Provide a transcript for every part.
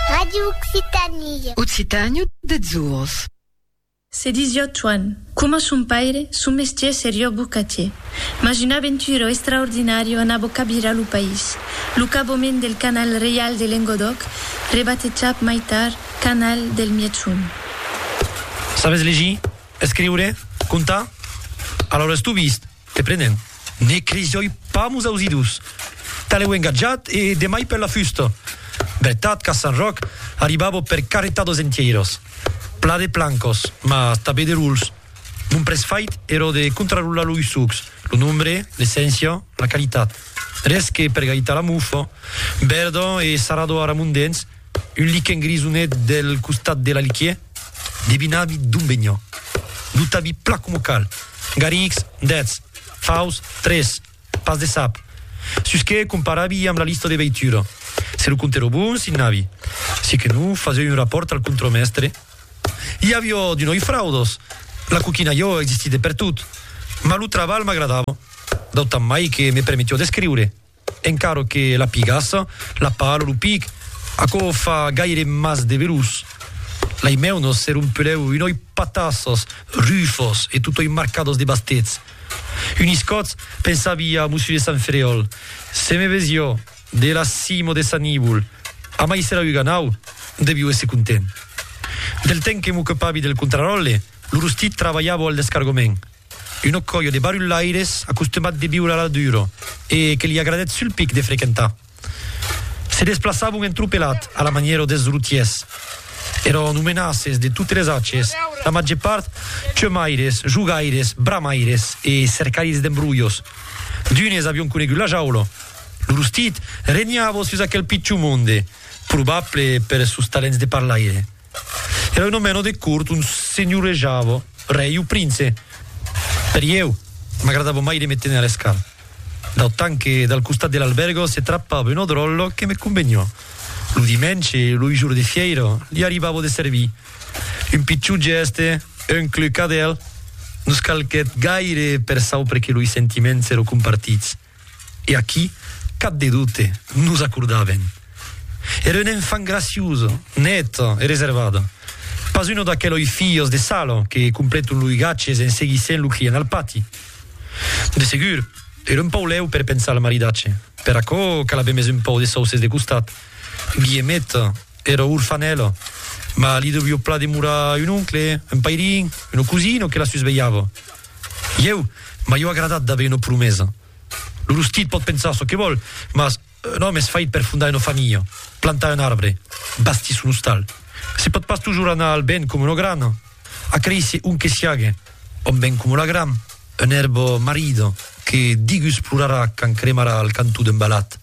Radio Occitanie. Occitània deths ors. Se disió Choan. Coma son paire, son mestier serió bocatier. Mas un aventuró estraordinario anabó cabirar lo país. Lo cabomènt del canal reial de Lengodòc, rebatejat mai tard canal del Mièchon. Sabes legir, escriure, contar? Alaura estubist! Te prenen. Ne crisoi pas mos ausidus. Talèu engatjat e demai per la fusta. Vertat qu'a Sant Ròc arribavo per carretar dos entieiros. Pla de plancos, mas tabé de ruls. Mon près fait ero de contrarular lo usux, lo nombre, l'esséncia, la qualitat. Res que per gaitar la mufa. Verdon e sarado ara mon dens. Un liquen grisonet del costat de l'aliquier devinavi d'on veniá. Lo tabi pla coma cal. Garrix, dètz. Faus, tres. Pas de sap. Sus que comparavi amb la lista de veitura. Se lo comptèro bon, signàvi. Se que non, fasèu un rapòrt al contremèstre. I avió d'unoi fraudos. La coquina jo existí de pertot. Mas lo trabalh m'agradava. D'autant mai que me permetió d'escriure. Encara que la pigassa, la pala, lo pic, aquò fa gaire mas de velús. Lai meu nos se rompelèu unòi patassas, rufas e totòi marcadas de bastets. Un iscòtz pensavi a Mussu de Sant Ferèol, se me vesió de la cimo de sa nívol, amai se la uganau, devió èsser content. Del temps que m'ocupavi del contraròtle, lo rostit trabalhavo al descargament. Una còia de barulhaires acostumats de viure a la dura e que li agradèt sul pic de frequentar. Se desplaçavon en tropelat a la manièra dels routiers. Èran omenaces de totes les ages, la màger part cheumaires, jogaires, bramaires e cercaires d'embrolhos. D'unes avián conegut la jaula. Lo rostit regnava sus aquel pichon monde, probable per sos talents de parlaire. Era una mena de cort ont senhorejava rei o prince. Per ieu, m'agradava mai de me téner a l'escart, d'autant que dal costat de l'albèrga se trapava una dròlla que me conveniá. Lo dimenge, lo jour de fièira, li arribava de servir. Un pichon gèste, un clucadèl, nos calquèt gaire per saupre que loi sentiments èra compartits. E aquí, cap de dubte, nos acordàvem. Era un enfant graciosa, neta e reservada. Pas una d'aqueloi filhas de sala que completon loi gatges en seguissent lo client al pati. De segur, era un pau lèu per pensar al maridatge. Per aquò cal aver mes un pau de sauces de costat. Guillemeta era orfanèla, mas li devió plan demorar un oncle, un pairin, una cosina que la susvelhava. Ieu, m'aieu agradat d'aver una promesa. Lo rostit pòt pensar çò que vòl, mas un òme es fait per fondar una familha, plantar un arbre, bastir son ostal. Se pòt pas tojorn anar al vent coma una grana, acréisser ont que siague, òm vent coma la gram, un èrbor marida. que digus plorarà quand cremarà al cantó d'un balat.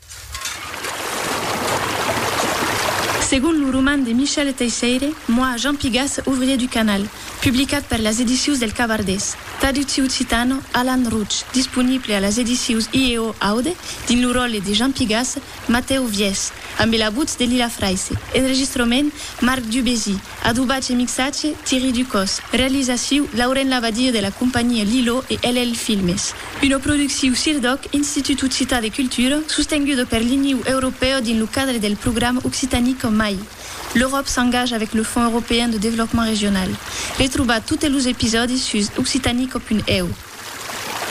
Segon lo roman de Michel Teisseire, Moi, Jean Pigas, ouvrier du canal, publicat per las edicius del Cabardés, traducci occitano, Alan Rouch, disponible a las edicius IEO Aude, dins lo ròle de Jean Pigas, Matèu Viès, ambe la votz de Lila Fraisse, enregistrament, Marc Dubésy, Adobatge e mixatge, Thierry Ducos. Realizaciu, Lauren Labadie de la companhia Lilo e LL Filmes. Una producciu Sirdoc, Institut Occitan de Cultura, sostenguda per l'Iniu Europèu dins lo cadre del programa Occitanie qu'en mai. L'Euròp s'engaja avec le Fonds Européen de Développement Régional. Retrobar totes los episòdis sus occitanico.eu.